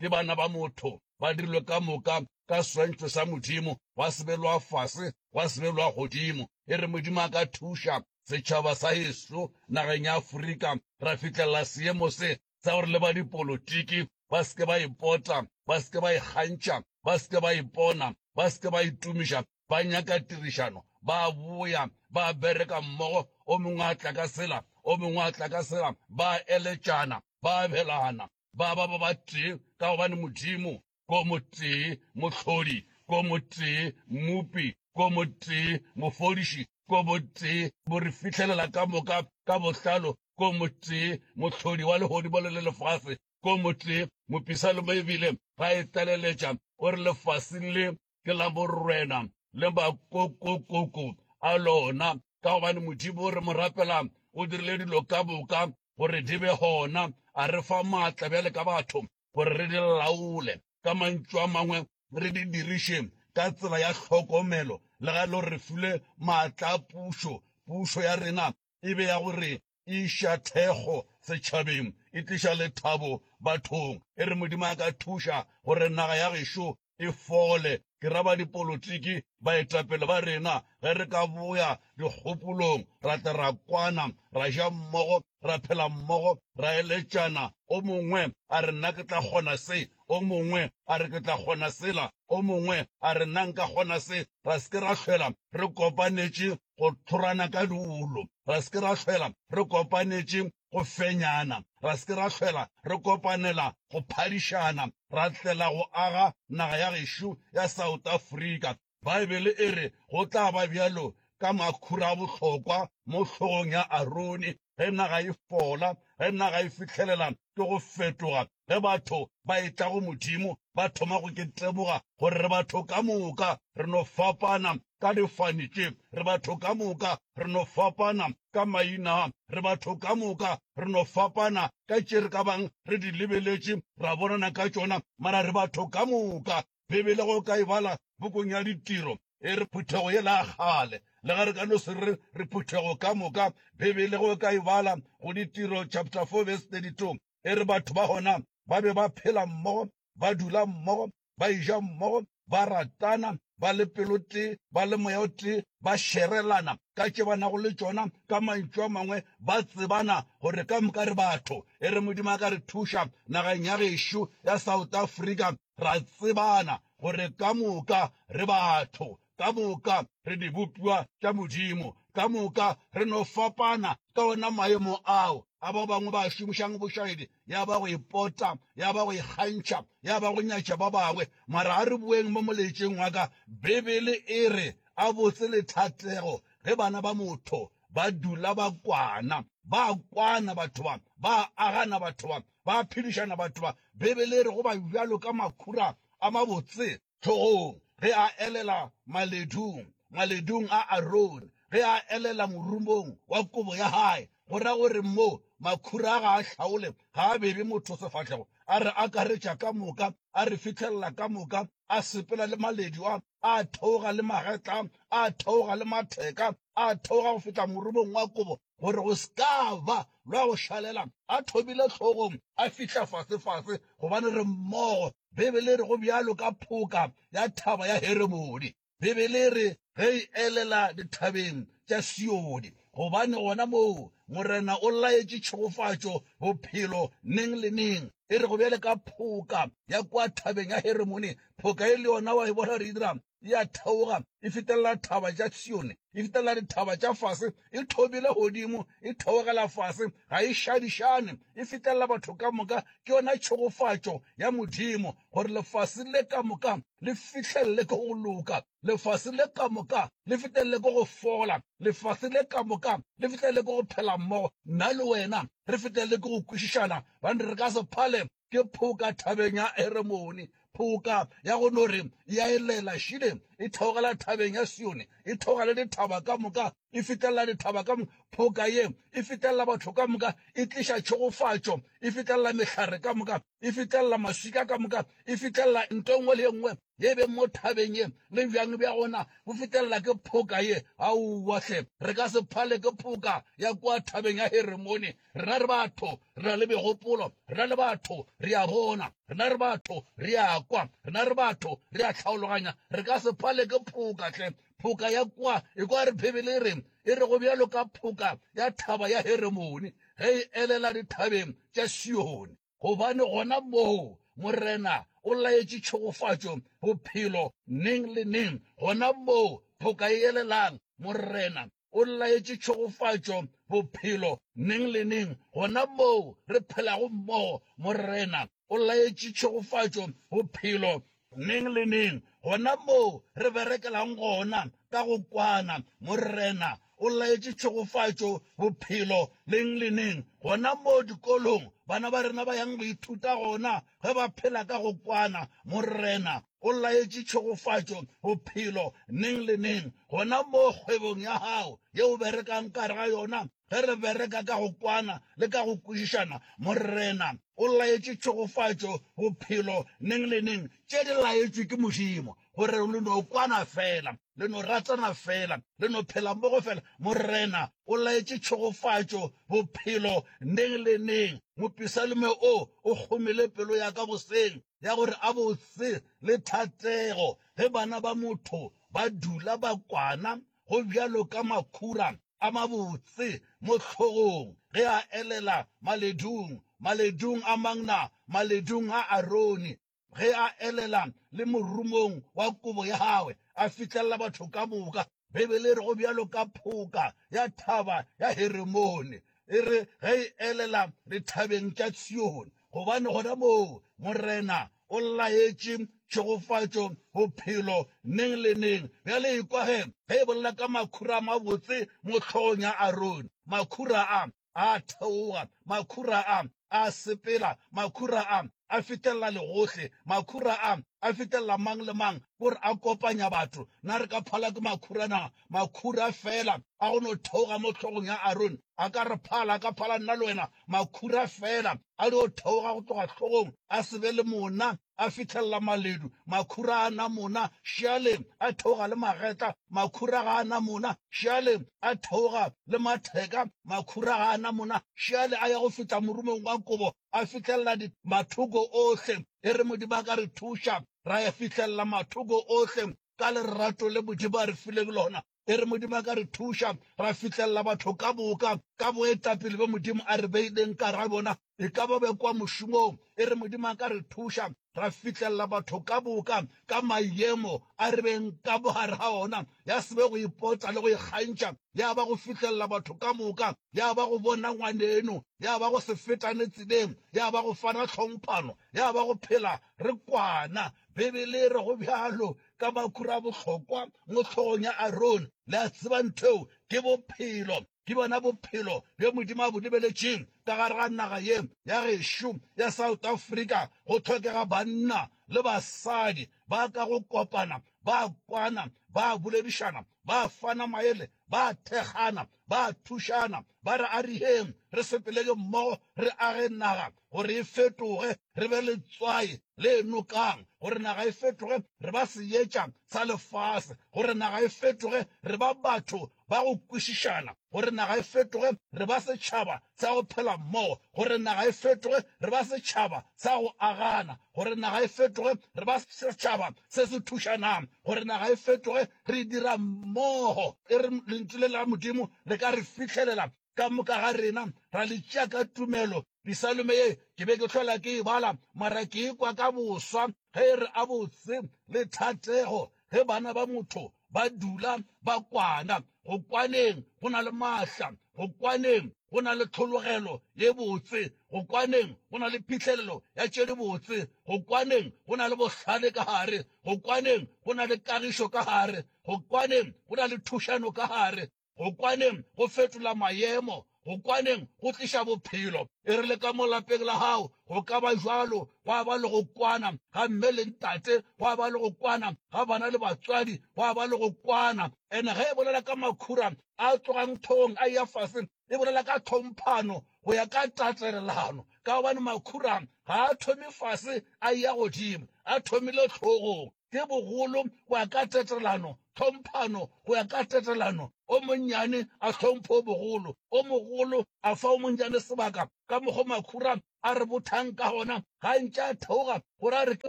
ke bana ba motho, ba dirilwe ka moka ka swantšho sa Modimo, gwa sebelwa fase, gwa sebelwa godimo. E re Modimo a ka thuša setšhaba sa heso nageng ya Afrika, ra fihlelela seemo se sa gore le ba dipolotiki ba seke ba ipota, ba seke ba ikgantšha, ba seke ba ipona, ba seke ba itumiša, ba nyaka tirišano, ba boya, ba bereka mmogo, o mongwe a tla ka sela, o mongwe a tla ka sela, ba eletšana, ba abelana, ba ba ba ba tee ka gobane modimo ko motee mohlodi ko motee mmupi ko motee mofodiši ko motee bo re fihlelela ka moka ka bohlalo ko motee mohlodi wa legodimo le le lefase ko motee mopisa le mo ebile ga e tlaleletša o re lefaseng le ke la borwena le makokokoko a lona ka gobane modimo o re mo rapelang o dirile dilo ka boka gore di be gona a re fa maatla bjale ka batho gore re di laole ka mantšu a mangwe re di dirišeng ka tsela ya tlhokomelo le ga e le gore re file maatla a pušo pušo ya rena e be ya gore e iša thekgo setšhabeng, e tliša lethabo bathong. E re Modimo a ka thuša gore naga ya gešo e fole, ke ra badipolotiki, baetapele ba rena, ge re ka boya dikgopolong, ra tla ra kwana, ra ja mmogo, ra phela mmogo, ra eletšana, o mongwe a re nna ke tla kgona se, o mongwe a re ke tla kgona sela, o mongwe a re nna nka kgona se, ra se ke ra hlwela re kopanetše go tlhorana ka diolo, ra se ke ra hlwela re kopanetše go fenyana, ra se ke ra hlwela re kopanela go phadišana, ra tlela go aga naga ya gešo ya South Africa. Baebele e re go tla ba bjalo ka makhura a bohlokwa mo hlogong ya Arone, ge naga e fola, ge naga e fihlelela ke go fetoga, ge batho ba etla go Modimo ba thoma go ketlemoga gore re batho ka moka re no fapana ka difane tše, re batho ka moka re no fapana ka maina, re batho ka moka re no fapana ka tše re ka bang re di lebeletše ra bonana ka tšona, mara re batho ka moka Beibele go ka e bala pukung ya Ditiro e re phuthego ye la kgale. Le ge re ka no se re re phuthego ka moka, Beibele go ka e bala go Ditiro chapter 4 verse 32 e re batho ba gona ba be ba phela mmogo, ba dula mmogo, ba eja mmogo, ba ratana, ba le pelotee, ba le moya o tee, ba šerelana ka tše ba nago le tšona, ka mantšu a mangwe ba tsebana gore ka moka re batho. E re Modimo a ka re thuša nageng ya gešo ya South Africa Ra tsebana gore ka moka re batho, ka moka re dibopiwa tša Modimo, ka moka re no fapana ka ona maemo ao a ba bangwe ba a šomišago bošaedi, ya ba go ipota, ya ba go ikgantšha, ya ba go nyatša ba bangwe. Mara a re boeng mo molaetšeng wa ka. Beibele e re, A botse le thatego ge bana ba motho ba dula ba kwana. Ba a kwana batho ba, ba a agana batho ba, ba a phedišana batho ba. Beibele e re go ba bjalo ka makhura a mabotse hlogong ge a elela maledung, maledung a Arone, ge a elela morumong wa kobo ya hae, go ra gore mo makhura a ga a hlaole, ga a bere motho sefahlego, a re akaretša ka moka, a re fihlella ka moka, a sepela le maledu a, a theoga le magetla a, a theoga le matheka a, a theoga go fihla morumong wa kobo gore go se ka ba lwa go šalela, a thobile hlogong a fihla fasefase, gobane re mmogo. Beibele e re, Go bjalo ka phoka ya Thaba ya Heremone. Beibele e re, Ge e elela dithabeng tša Sione, gobane gona moo Morena o laetše tšhegofatšo, bophelo, neng le neng. E re, Go bjalo ka phoka ya kua Thabeng ya Heremone, phoka e le yona wa e bona, re dira e a theoga, e fetelela thaba tša Sione, e fetelela dithaba tša fase, e thobile godimo, e theogela fase, ga e šadišane, e fetelela batho ka moka. Ke yona tšhegofatšo ya Modimo, gore lefase le ka moka le fihlelele ke go loka, lefase le ka moka le fetelele ke go fola, lefase le ka moka le fetelele ke go phela mmogo, nna le wena re fetelele ke go kwešišana, gobane re ka se phale ke phoka thabeng ya Heremone, phoka ya go no re ya elela šile, e theogela thabeng ya Sione, e theoga le dithaba ka moka, e fihlelela dithaba ka moka. Phoka ye e fihlelela batho ka moka, e tliša tšhegofatšo, e fihlelela mehlare ka moka, e fihlelela maswika ka moka, e fihlelela nto nngwe le nngwe ye beng mo thabeng ye, le bjang bja gona bo fihlelela ke phoka ye. Aowa hle, re ka se phale ke phoka ya kwa thabeng ya Heremone, Rena re batho re na le megopolo, rena le batho re a bona, rena re batho re a kwa, rena re batho re a tlhaologanya. Re ka se pale ke phoka hle, phoka ya kwa. Ekwa re Bibele e reng, e rego bjalo ka phoka ya thaba ya Heremone ge e elela dithabeng tša Sione. gobane gona moo Morena o laetše tšhogofatšo, bophelo, neng le neng, gona moo phoka e elelang, Morena o laetše tšhogofatšo, bophelo, neng le neng, gona moo re phelago mmogo, Morena o laetše tšhogofatšo, bophelo, Neng le neng, gona moo re berekelang gona ka go kwana, Morena o laetše tšhegofatšo, bophelo, neng le neng, gona moo dikolong bana ba rena ba yang go ithuta gona ge ba phela ka go kwana, Morena o laetše tšhegofatšo, bophelo, neng le neng, gona moo kgwebong ya Gago ye O berekang ka gare ga yona, Ge re bereka ka go kwana le ka go kwešišana, Morena o laetše tšhegofatšo, bophelo, neng le neng, tše di laetšwe ke Modimo, gore le no kwana feela, le no ratana feela, le no phela mmogo feela. Morena o laetše tšhegofatšo, bophelo, neng le neng. Mopisalme o o kgomile pelo ya ka goseng ya gore a botse le thatego ge bana ba motho ba dula ba kwana go bjalo ka makhura a mabotse mo hlogong ge a elela maledung, maledung a mang na? Maledung a Arone, ge a elela le morumong wa kobo ya gagwe, a fihlelela batho ka moka. Beibele e re go bjalo ka phoka ya Thaba ya Heremone, e re ge e elela dithabeng tša Tshiyone, gobane gona moo Morena O laetše tšhegofatšo bophelo neng le neng. Bjale ekwa ge e bolela ka makhura a mabotse mo hlogong ya Arone. Makhura a a theoga, makhura a a sepela, makhura a a fihlelela legohle, makhura a a fihlelela mang le mang ke gore a kopanya batho. Na re ka phala ke makhura na? Makhura fela a go no theoga mo hlogong ya Arone a ka re phala, a ka phala nna le wena. Makhura fela a dio theoga go tloga hlogong, a se be le monna, a fihlelela maledu, makhura a na monna, šealeng, a theoga le magetla, makhura ga a na monna, šealeng, a theoga le matheka, makhura ga a na monna, šeale a ya go fihla morumong wa kobo, a fihlelela di mathoko ohle. E re Modimo a ka re thuša, ra ya fihlelela mathoko ohle ka lerato le Modimo a re fileng lona. E re Modimo a ka re thuša ra fihlelela batho ka boka ka boetapele bjo Modimo a re beileng kara bona, e ka ba be kwa mošomong. E re Modimo a ka re thuša ra fihlelela batho ka boka ka mayemo a re beng ka bogare ga ona, ya se be go ipota le go ikgantšha, ya ba go fihlelela batho ka moka, ya ba go bona ngwaneno, ya ba go se fetane tseleng, ya ba go fana tlhomphano, ya ba go phela re kwana. Bibele e re go bjalo. ka makhura a bohlokwa mo hlogong ya Arone. Le a tseba nthweo ke bophelo, ke bona bophelo bjo Modimo a bo lebeletšeng ka gare ga naga ye ya gešo ya South Africa. Go hlokega banna le basadi ba ka go kopana, ba kwana, ba boledišana, ba fana maele, ba thekgana, Ba a thušana, ba re, Ariheng re sepelege mmogo re age naga gore e fetoge, re be letswai le enokang, gore naga e fetoge re ba seetša sa lefase, gore naga e fetoge re ba batho ba go kwešišana, gore naga e fetoge re ba setšhaba tsa go phela mmogo, gore naga e fetoge re ba setšhaba sa go agana, gore naga e fetoge re ba setšhaba se se thušanang, gore naga e fetoge re dira mmogo. E re Lentšu le la Modimo le ka re fihlelela, ka moka ga rena ra le tšea ka tumelo. Pisalome ye ke be ke hlola ke e bala, mara ke e kwa ka boswa ge e re, A botse le thatego ge bana ba motho ba dula ba kwana, go kwaneng go na le maatla, go kwaneng go na le tlhologelo ye botse, go kwaneng go na le phihlelelo ya tše di botse, go kwaneng go na le bohlale ka gare, go kwaneng go na le kagišo ka gare, go kwaneng go na le thušano ka gare. Go kwaneng go fetola maemo. Go kwaneng go tliša bophelo. E rile ka mo lapeng la gago go ka ba bjalo, gwa ba le go kwana ga mme le ntate, gwa ba le go kwana ga bana le batswadi, gwa ba le go kwana. And ge e bolela ka makhura a tlogang thong a eya fase, e bolela ka tlhomphano go ya ka tatelelano, ka gobane makhura ga a thome fase a eya godimo, a thomile hlogong. ke bogolo go ya ka tetelano, tlhomphano go ya ka tetelano, o monnyane a hlomphe o mogolo, o mogolo a fa o monnyane sebaka, ka mokgo makhura a re bothang ka gona, gantši a theoga gore a re ke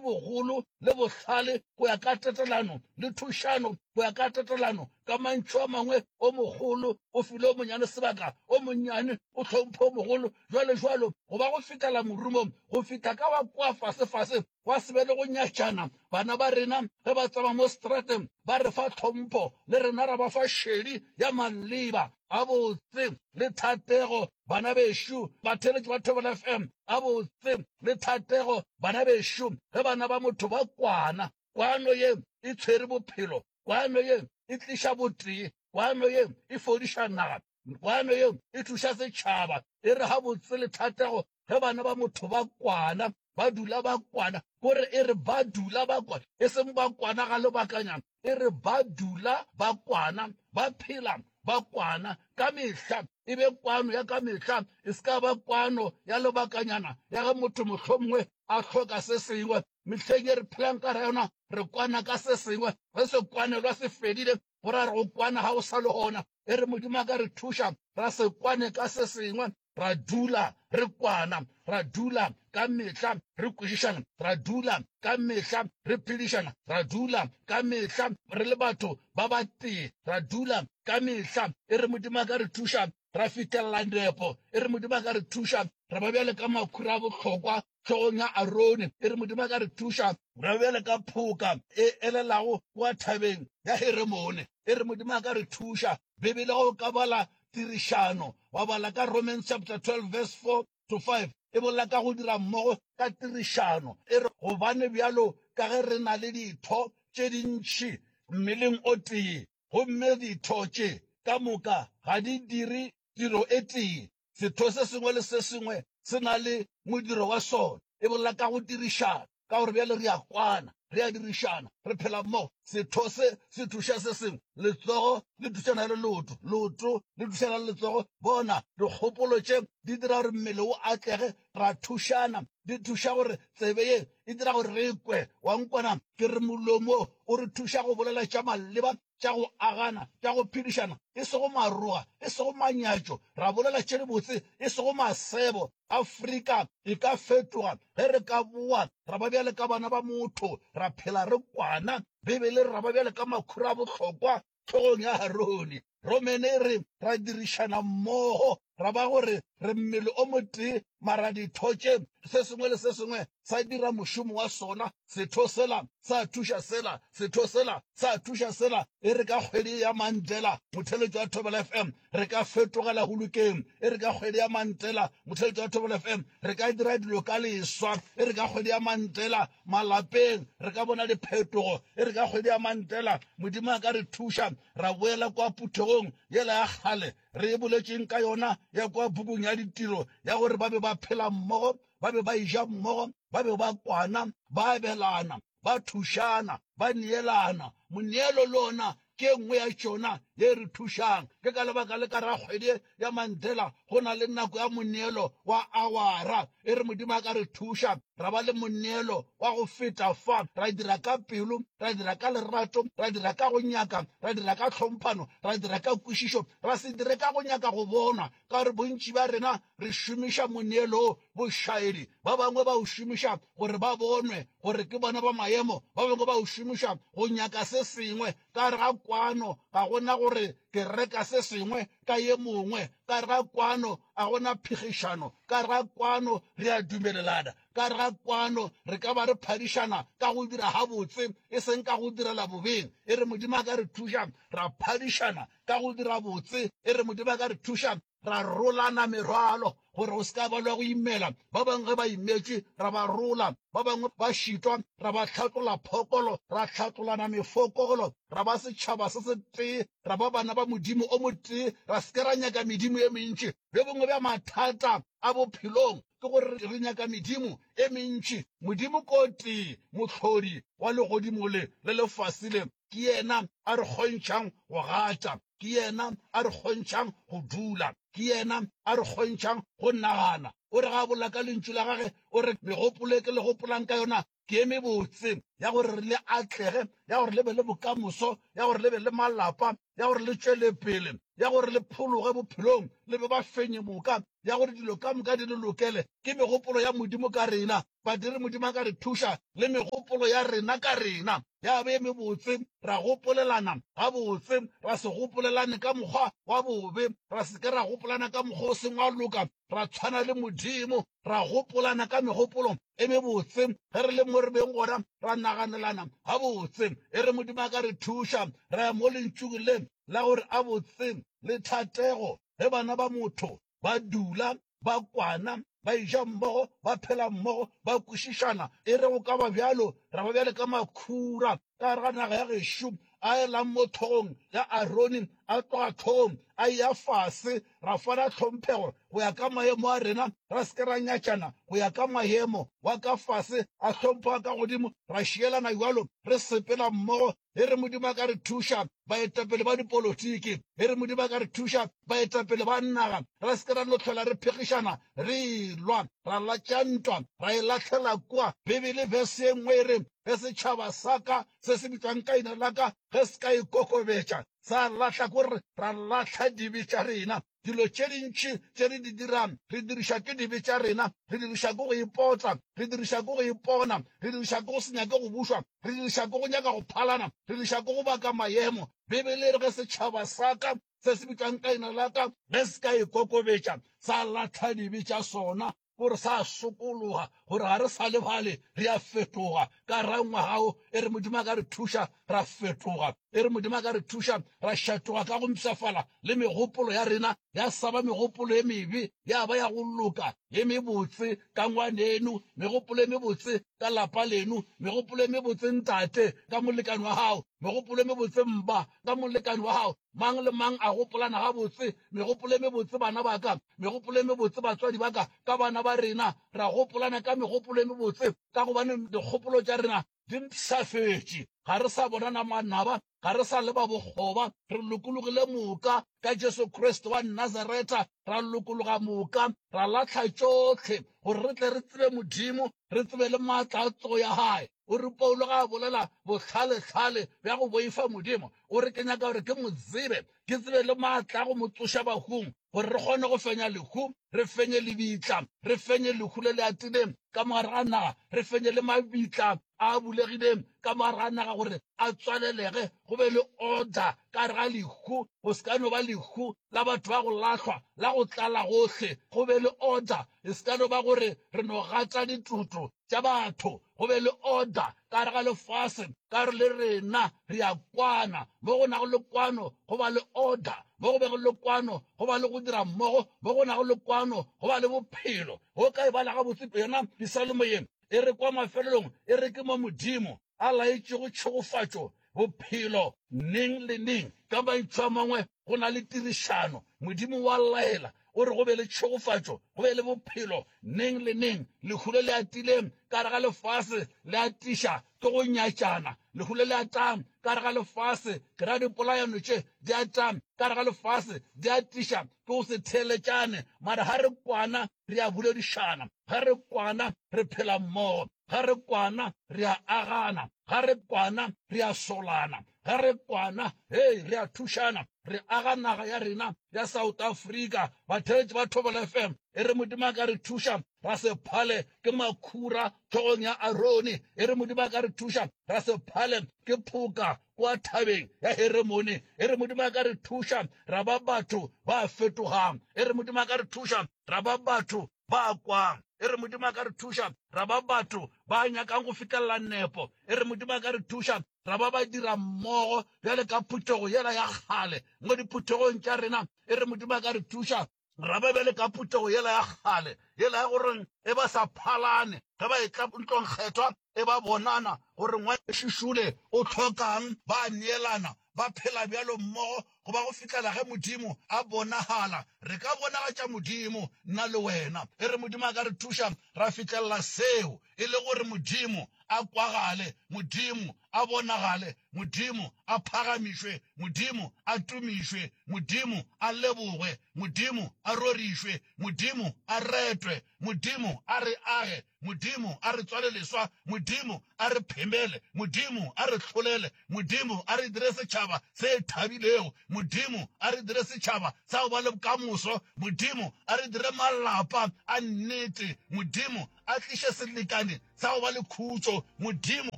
bogolo le bohlale go ya ka tetelano, le thušano go ya ka tetelano, ka mantšu a mangwe o mogolo o file o monnyane sebaka, o monnyane o hlomphe o mogolo, jwalojwalo, go ba go fetela morumong, go fihla ka wa kua fasefase Gwa se be le go nyatšana. Bana ba rena ge ba tsama mo strateng ba re fa tlhompho, le rena ra ba fa šedi ya maleba gabotse le thatego. Bana bešo, batheeletši ba Thobela FM, gabotse le thatego. Bana bešo, ge bana ba motho ba kwana, kwano ye e tshwere bophelo, kwano ye e tliša botee, kwano ye e fodiša naga. Kwano yeo e thuša setšhaba, e re gabotse le thatego ge bana ba motho ba kwana, ba dula ba kwana. Ko re e re ba dula ba kwana, e seng ba kwana ga lobakanyana, e re ba dula ba kwana, ba phela ba kwana ka mehla. E be kwano ya ka mehla, e se ka ba kwano ya lobakanyana ya ge motho mohlomongwe a hloka se sengwe. Mehleng e re phelang ka ra yona re kwana ka se sengwe, ge sekwanelwa se fedile go ra re go kwana ga o sa le gona e re modimo a ka re thuša ra se kwane ka se sengwe ra dula re kwana ra dula ka mehla re kwešišana ra dula ka mehla re phedišana ra dula ka mehla re le batho ba ba tee ra dula ka mehla e re modimo a ka re thuša ra fitlhelela nepo e re Modimo a ka re thuša ra ba bjale ka makhura a bohlokwa hlogong ya Arone, e re Modimo a ka re thuša ra ba bjale ka phoka e elelago kwa thabeng ya Heremone, e re Modimo a ka re thuša. Bibele ge o ka bala tirišano, wa bala ka Romans chapter 12 verse 4 to 5, e bolela ka go dira mmogo ka tirišano, e re, Gobane bjalo ka ge re na le ditho tše dintši mmeleng o tee, gomme ditho tše ka moka ga di dire tiro e tee. Setho se sengwe le se sengwe se na le modiro wa sona, e bolela ka go dirišana, ka gore bjale re a kwana, re a dirišana, re phela mmogo. Setho se se thuša se sengwe, letsogo le thušana le leoto, leoto le thušana le letsogo. Bona, dikgopolo tše di dira gore mmele o atlege ra thušana. Di thuša gore tsebe ye e dira gore re kwe. Wa nkwana? Ke re molomo o re thuša go bolela tša maleba, tša go agana, tša go phedišana, e sego maroga, e sego manyatšo. Ra bolela tše dibotse, e sego masebo. Afrika e ka fetoga ge re ka boa ra ba bjale ka bana ba motho, ra phela re kwana. Beibele e re ra ba bjale ka makhura a bohlokwa hlogong ya Harone. Gomme ne re, ra dirišana mmogo, ra ba gore re mmele o motee, mara ditho tše, se sengwe le se sengwe sa dira mošomo wa sona, setho sela sa thuša sela, setho sela sa thuša sela, e re ka kgwedi ya Mantšela, motheletšo wa Thobela FM, re ka fetogela hulukeng e re ka kgwedi ya mantela motheletša wa thobela fm re ka dira dilo ka leswa e re ka kgwedi ya mantela malapeng re ka bona diphetogo e re ka kgwedi ya mantela modimo a ka re thuša ra boela kwa phuthegong yela ya kgale re e boletšeng ka yona ya kwa bukung ya ditiro ya gore ba be ba phela mmogo ba be ba eja mmogo ba be ba kwana ba abelana ba thušana, ba neelana. Moneelo le ona ke e nngwe ya tšona ye e re thušang. Ke ka lebaka le ka ra kgwedi ya Manthela go na le nako ya moneelo wa awara. E re Modimo a ka re thuša ra ba le moneelo wa go feta fa, ra dira ka pelo, ra dira ka lerato, ra dira ka go nyaka, ra dira ka tlhomphano, ra dira ka kwešišo, ra se dire ka go nyaka go bonwa. Ka gore bontši bja rena re šomiša moneelo wo bošaedi, ba bangwe ba o šomiša gore ba bonwe gore ke bona ba maemo, ba bangwe ba o šomiša go nyaka se sengwe ka gare ga kwano, ga go na gore ke reka se sengwe ka ye mongwe, ka gare ga kwano ga go na phigišano, ka gare ga kwano re a dumelelana, ka gare ga kwano re ka ba re phadišana ka go dira gabotse e seng ka go direla bobeng, e re Modimo a ka re thuša ra phadišana ka go dira botse, e re Modimo a ka re thuša ra rolana merwalo gore o se ka balwa go imela ba bangwe ge ba imetše ra ba rola ba bangwe ba šitwa ra ba hlatlola phokolo ra hlatlolana mefokolo ra ba setšhaba se se tee ra ba bana ba modimo o motee ra se ke ra nyaka medimo e mentši bjo bongwe bja mathata a bophelong ke gore re nyaka medimo e mentši modimo ko tee mohlodi wa legodimo le le lefase le Ke yena a re kgontšhang go gata. Ke yena a re kgontšhang go dula. Ke yena a re kgontšhang go nagana. O re ga a bolela ka Lentšu la gagwe, o re, Megopolo e ke le gopolang ka yona ke e mebotse, ya gore re le atlege, ya gore le be le bokamoso, ya gore le be le malapa, ya gore le tšwele pele, ya gore le phologe bophelong, le be bafenyi moka, ya gore dilo ka moka di le lokele. Ke megopolo ya Modimo ka rena. Badiri, Modimo a ka re thuša le megopolo ya rena ka rena. ya be e mebotse, ra gopolelana gabotse, ra se gopolelane ka mokgwa wa bobe, ra se ke ra gopolana ka mokgwa o seng wa loka, ra tshwana le Modimo, ra gopolana ka megopolo e mebotse ge re le mo re beng gona, ra naganelana gabotse. E re Modimo a ka re thuša, ra ya mo Lentšung le la gore a botse le thatego ge bana ba motho ba dula ba kwana, ba eja mmogo, ba phela mmogo, ba kwešišana. E re go ka ba bjalo, ra ba bjale ka makhura ka gare ga naga ya gešo, a elang mo tlhogong ya Arone, a tloga tlhogong a eya fase. Ra fana tlhomphego go ya ka maemo a rena, ra se ke ra nyatšana go ya ka maemo, wa ka fase a hlompha wa ka godimo, ra šielana bjalo re sepela mmogo e re Modimo a ka re thuša baetapele ba dipolotiki e re Modimo a ka re thuša baetapele ba naga re se ke ra no tlhola re phegišana re lwa ra latša ntwa ra e latlhela kwa bibele verse ye nngwe e re ge setšhaba sa ka se se bitswang ka ina la ka ge se ka ikokobetša sa latlha ko re ra latlha dibe tša rena Dilo tše dintši tše re di dirang re dirišwa ke dibe tša rena, re dirišwa ke go ipotla, re dirišwa ke go ipona, re dirišwa ke go se nyake go bušwa, re dirišwa ke go nyaka go phalana, re dirišwa ke go baka mayemo. Beibele e re, Ge setšhaba sa ka se se bitšwang ka leina la ka ge se ka ikokobetša, sa lahla dibe tša sona, Go re sa sokologa gore ga re sa lebale, re a fetoga. Ka ra ngwaga o, e re Modimo a ka re thuša, ra fetoga. E re Modimo a ka re thuša, ra šatoga ka go mpshafala, le megopolo ya rena ya sa ba megopolo e mebe, ya ba ya go loka, e mebotse. Ka ngwaneno, megopolo e mebotse ka lapa leno, megopolo e mebotse ntate ka molekane wa gago, megopolo e mebotse mma ka molekane wa gago, Mang le mang a gopolana gabotse, megopolo e mebotse, bana ba ka, megopolo e mebotse, batswadi ba ka, ka bana ba rena. Ra gopolana ka megopolo e mebotse, ka gobane dikgopolo tša rena di mpshafetše. Ga re sa bona na manaba, ga re sa leba bokgoba. Re lokologile moka ka Jesu Kriste wa Nazareta. Ra lokologa moka, ra lahla tšohle, gore re tle re tsebe Modimo, re tsebe le maatla a tsogo ya Hae. O re Paulo ga a bolela bohlalehlale bja go boifa Modimo, o re, Ke nyaka gore ke mo tsebe, ke tsebe le maatla a go mo tsoša bahung, gore re kgone go fenya lehu, re fenye lebitla, re fenye lehu le le atileng ka mogare ga naga, re fenye le mabitla a a bulegileng ka mogare ga naga, gore a tswalelege, go be le order ka gare ga lehu, go se ka no ba lehu la batho ba go lahlwa, la go tlala gohle, go be le order, e se ka no ba gore re no gata ditoto, tša batho, go be le order ka gare ga lefase, ka gore le rena re a kwana. Mo go nago le kwano, go ba le order. Mo go bego le kwano, go ba le go dira mmogo. Mo go nago le kwano, go ba le bophelo. O ka e bala gabotse yona Pisalmo ye, e re kwa mafelelong e re ke mo Modimo. a laetšego tšhegofatšo bophelo neng le neng. Ka mantšu a mangwe, go na le tirišano. Modimo wa laela, o re go be le tšhegofatšo, go be le bophelo neng le neng. Lehu le le atileng ka gare ga lefase le atiša ke go nyatšana. Lehu le le atang ka gare ga lefase ke ra dipolayano tše di atang ka gare ga lefase di atiša ke go se theeletšane. Mara ga re kwana re a boledišana, ga re kwana re phela mmogo. ga re kwana re a agana, ga re kwana re a solana, ga re kwana hei re a thušana, re aga naga ya rena ya South Africa. Batheletši ba Thobela FM e re Modimo a ka re thuša ra se phale ke makhura tlhogong ya Arone, e re Modimo a ka re thuša ra se phale ke phoka kwa thabeng ya Heremone, e re Modimo a ka re thuša ra ba batho ba fetogang, e re Modimo a ka re thuša ra ba batho ba kwang. E re Modimo a ka re thuša ra ba batho ba nyakang go fihlelela nepo. E re Modimo a ka re thuša ra ba badirammogo bjale ka phuthego yela ya kgale mo diphuthegong tša rena. E re Modimo a ka re thuša ra ba bjale ka phuthego yela ya kgale, yela ya gore ge ba sa phalane ge ba etla ntlong kgethwa, e ba bonana gore Ngwanešu Shule o hloka'ng, ba a neelana, ba phela bjalo mmogo go ba go fihlela ge Modimo a bonagala. Re ka bonagatša Modimo, nna le wena. E re Modimo a ka re thuša ra fihlelela seo, e le gore Modimo a kwagale, Modimo a bonagale, Modimo a phagamišwe, Modimo a tumišwe, Modimo a lebogwe, Modimo a rorišwe, Modimo a retwe, Modimo a re age, Modimo a re tswale leswa, Modimo a re phemele, Modimo a re hlolele, Modimo a re dire setšhaba se thabilego, Modimo a re dire setšhaba sa go ba le bokamoso, Modimo a re dire malapa a nnete, Modimo a tliše selekane sa go ba le khutšo, Modimo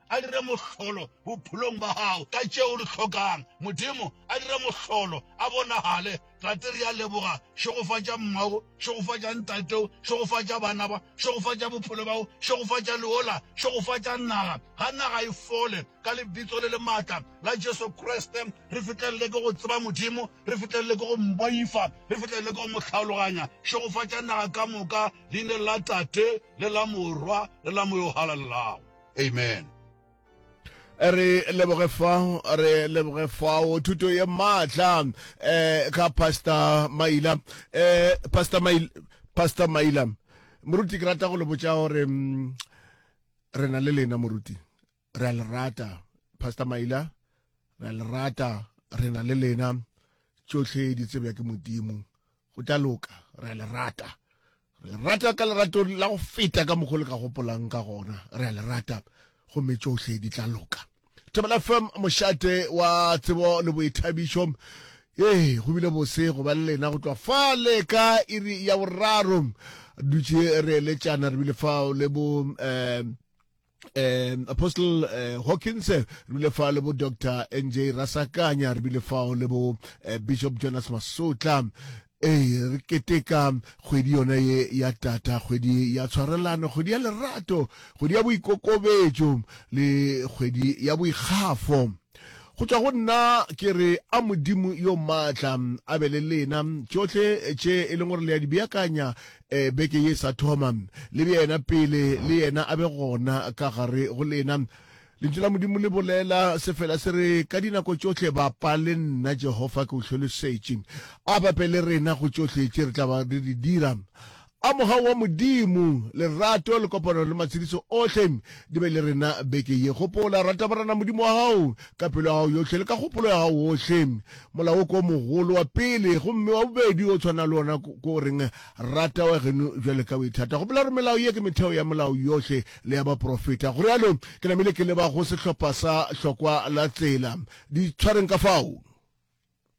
a dire mohlolo bophelong ba gago ka tšeo di hlokang. Modimo a dire mohlolo, a bonagale. Tate, re a leboga. Šegofatša mmao, šegofatša ntateo, šegofatša bana ba, šegofatša bophelo bjao, šegofatša leola, šegofatša naga. Ga naga e fole, ka Lebitso le le maatla la Jesu Kriste. Re fihlelele ke go tseba Modimo, re fihlelele ke go Mboifa, re fihlelele ke go Mo tlhaloganya. Šegofatša naga ka moka, Leineng la Tate, le la Morwa, le la Moya o Halalelang. amen re leboge fao re leboge fao thuto ye maatla um eh, ka pastor maila um eh, pastor maila pastor maila moruti ke rata go le botsa gore mm, re na le lena moruti re a le rata pastor maila re a le rata re na le lena tsotlhe di tsebja ke modimo Go tla loka. Re a le rata. Re le rata ka lerato la go feta ka mokgwa le ka gopolang ka gona. Re a le rata. Gomme tšohle di tla loka. Thobela FM, mošate wa tsebo le boithabišo. Ee, go bile bose go ba le lena go tloa fa le ka iri ya boraro. Dutše re eletšana re bile fao le bo um um apostle uh, hawkins re bile fa le bo dr nj rasakanya re bile fao le bo uh, bishop jonas masotla ee re keteka kgwedi yona ye ya tata kgwedi ya tshwarelano kgwedi ya lerato kgwedi ya boikokobetšo le kgwedi ya boikgafo go tšwa go nna ke re a modimo yo maatla a be le lena tšohle tše e leng gore le ya di beakanya beke ye e sa thoma, le bjena pele le Yena a be gona ka gare go lena. Lentšu la Modimo le bolela se fela se re, Ka dinako tšohle bapa le nna, Jehofa, ke o hlolosetše. A bape le rena go tšohle tše re tla ba re di dira. A Mogawu wa Modimo, lerato le kopano le matshediso ohle di be le rena beke ye. Gopola, Rata Morena Modimo wa gago ka pelo ya gago yohle le ka kgopolo ya gago ohle. Molao wo ke wo mogolo wa pele, gomme wa bobedi o tshwana le wona ke o reng, Rata wa geno bjale ka o ithata. Gopola gore melao ye ke metheo ya Molao yohle le ya baporofeta. Go realo, ke namile ke leba go sehlopha sa hlokwa la tsela. Di tshwareng ka fao.